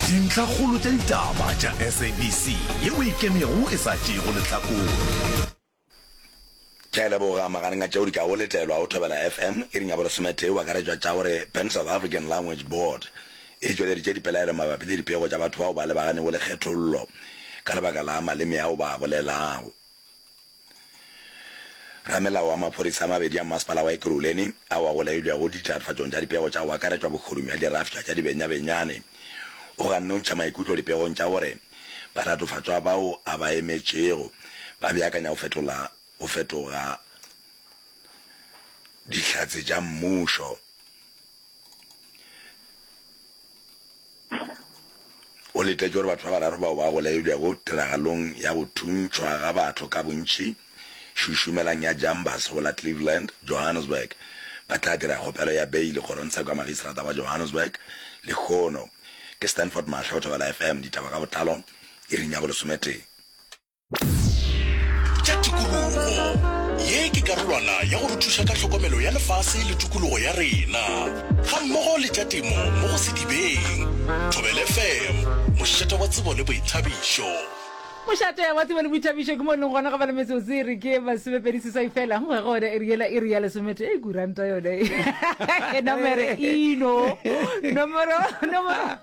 Dintlhakgolo tša ditaba tša SABC ye o ikemego e sa tšeego lehlakore. Ke a leboga magareng a tšeo di kago letelwago Thobela FM iri ya bolesometee o akaretšwa tša gore Pan South African Language Board e tšweleditše dipelaelo mabapi le dipego tša batho bao ba lebaganego le kgethollo ka lebaka la maleme ao ba a bolelago. Ramelao wa maphodisa a mabedi a mmasepala wa Ekurhuleni ao a golegilwego ditiragatšong tša dipego tša go akaretšwa bohorung bja dirafša tša dibenyabenyane o ganne go ntšha maikutlo dipegong tša gore baratofatšwa bao a ba emetšego ba beakanya go fetola go fetoga Dihlatse tša Mmušo. O letetše gore batho ba bararo bao ba bolailwego tiragalong ya go thuntšhwa ga batho ka bontši šušumelang ya Jambas go la Cleveland, Johannesburg, ba tla dira kgopelo ya beili kgorongtsheko ya magistrata wa Johannesburg lehono. Ke Stanford Mahlo, Thobela FM, ditaba ka botlalo, iring ya bolesometee. tša tikologo ye ke karolwana ya go re thuša ka tlhokomelo ya lefase le tikologo ya rena ga mmogo le tša temo mo go sedibeng thobele fm mošate wa tsebo le boithabišo mošate wa tsebo le boithabišo ke mo leng gona ga ba le metsotso e re ke masomepedi seswai fela go ga gone e riela e re ya lesomete e kuranta yone e nomere ino nomoro nomoro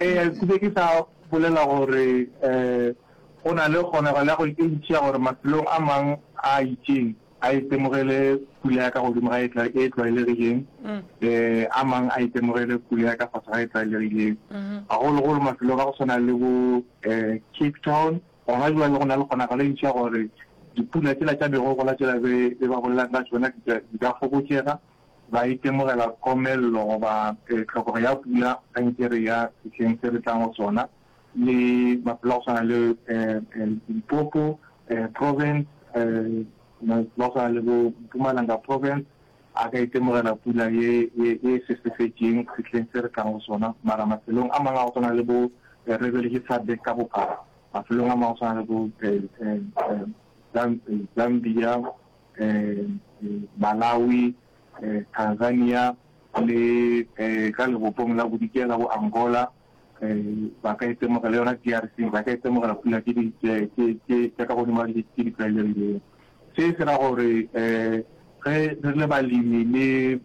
Ee, ke be ke sa bolela gore um go na le kgonagalo ya go e ntši ya gore mafelong a mang a a itšeng a itemogele pula ya ka godimo ga e tlwaelegileng, um a mang a itemogele pula ya ka fase ga e tlwaelegileng, gagologolo mafelong a go tshwana le bo um Cape Town. Gona bjale go na le kgonagalo e ntši ya gore dipula tšela tša megogola tšela be ba bolelaka ka tšona di ka fokotšega. ba itemogela komello goba tlhokego ya pula ga nke re ya sehleng se re tlang go sona, le mafelo a go swana le Limpopo Province, mafelo a go swana le bo Mpumalanga Province a ka itemogela pula ye e sesefetšeng sehleng se re tlang go sona. Mara mafelong a mangwe a go swana le bo, re beletše SADC ka bophara, mafelong a mangwe a go swana le bo Zambia, Malawi, Tanzania le ka lebopong la bodikela bo Angola ba ka itemogela le yona DRC ba ka itemogela pula tše di tša ka godimo tše di tlwaelegilego. Se se ra gore ge re le balemi le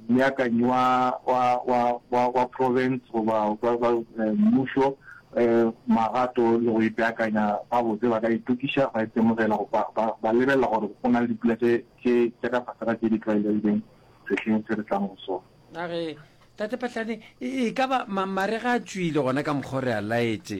Mobeakanyi wa, wa, wa, wa, wa profense goba wa, wa eh, mmušo eh, magato le go ipeakanya gabotse, ba ka itokiša ba itemogela go ba, ba, ba lebelela gore go na le dipula tše, tše, tše ka fase ga tše di tlwaelegileng sehleng se re tlang go sona. A re, Tate Patlane, e, e ka ba ma, marega a tšwile gona ka mokgwa o re a laetše.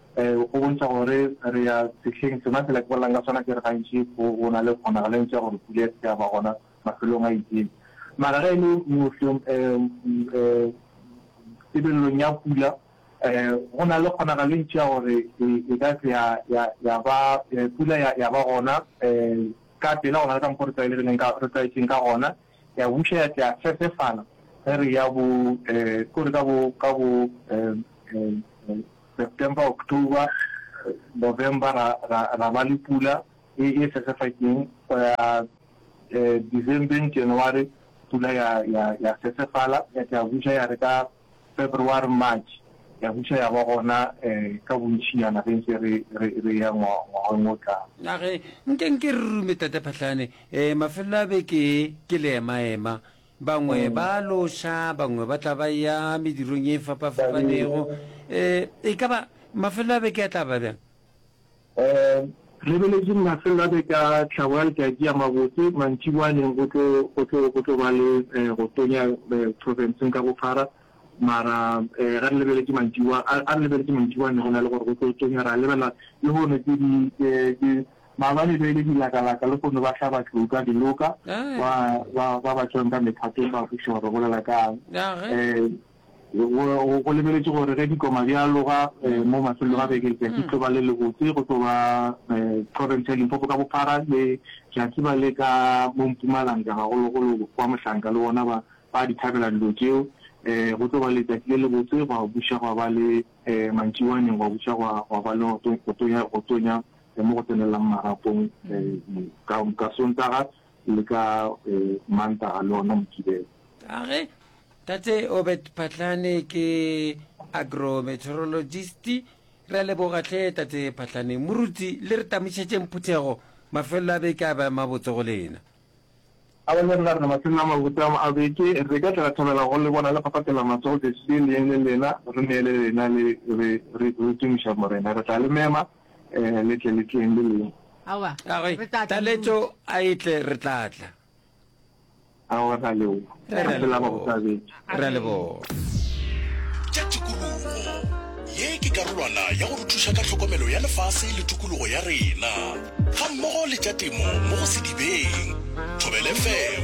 Go bontšha gore re ya sehleng sona, fela ke bolelang ka sona ke re gantši go na le kgonagalo e ntši ya gore pula e se ke ya ba gona mafelong a itseng. Mara ge e le mohlom, tebelelong ya pula, go na le kgonagalo e ntši ya gore e ka se ya ba pula ya ba gona ka pela go na le ka mokgwa o re tlwaelegileng, re tlwaetšeng ka gona. Ya buša ya tla ya sesefala ge re ya bo, ke gore ka bo, ka bo. September, October, November ra, ra, ra ba le pula e, e sesefakeng go ya eh, Decembeng, January pula ya, ya, ya sesefala ya, ya buša ya re ka February, March ya buša ya ba gona eh, ka bontšhinyana ge ntse re, re, re ya ngwa, ngwageng o tlang. Na ge nke nke re rume Tate Phahlane eh, mafelelo a beke e, ke le emaema. Bangwe ba a loša, bangwe ba tla ba ya medirong ye e fapa-fapanego. E ka ba mafelelo a beke a tla ba bjang? Lebeletseng mafelelo a beke a tlhago a letšatši a mabotse. Mantšiboaneng go tlo ba le go tonya profenseng ka bophara, mara ga re lebeletše mantšiboa, a re lebeletše mantšiboaneng go na le gore go tlo tonya. Ra lebelela lehono ke Maabane be e le dilakalaka le go no ba hlaba tlou ka diloka, ba, ba, ba ba tšwang ka mephatong ba kwešiša gore ba bolela ka'ng. Um go, go lebeletšwe gore ge dikoma di aloga um mo mafelelong a beke letšatši tlo ba le lebotse, go tlo ba um profense ya Limpopo ka bophara le Jatiba le ka mo Mpumalanga gagologolo kwa Mohlanka le bona ba, ba a di thabela dilo tšeo. Um go tlo ba letšatši le lebotse, gwa buša gwa ba le, um mantšiboaneng gwa buša gwa, gwa ba le go, go tonya, go tonya le mo go tsenelelang marapong ka, ka Sontaga le ka Mantaga le ona Mokibelo. Age Tate Obed Phatlane ke agrometeorologist. Re a leboga hle Tate Phatlane. Moruti le re tamošetšeng phuthego, mafelelo a beke a be a mabotse go lena. A ba nyakela rena mafelelo a mabotse a beke, re ka tla ra thabela go le bona le phaphatela mahlo go Jesu le yene lena, re neele lena le re re re tumiša Morena. Re tla le mema le tle le tleng le lena. Aowa, re tla tla Taletšo a e tle re tla tla. Aowa, ra leboga. Mafelelo a mabotse a beke. re a leboga tša tikologo ye ke karolwana ya go re thuša ka tlhokomelo ya lefase le tokologo ya rena ga mmogo le tša temo mo go sedibeng thobelefm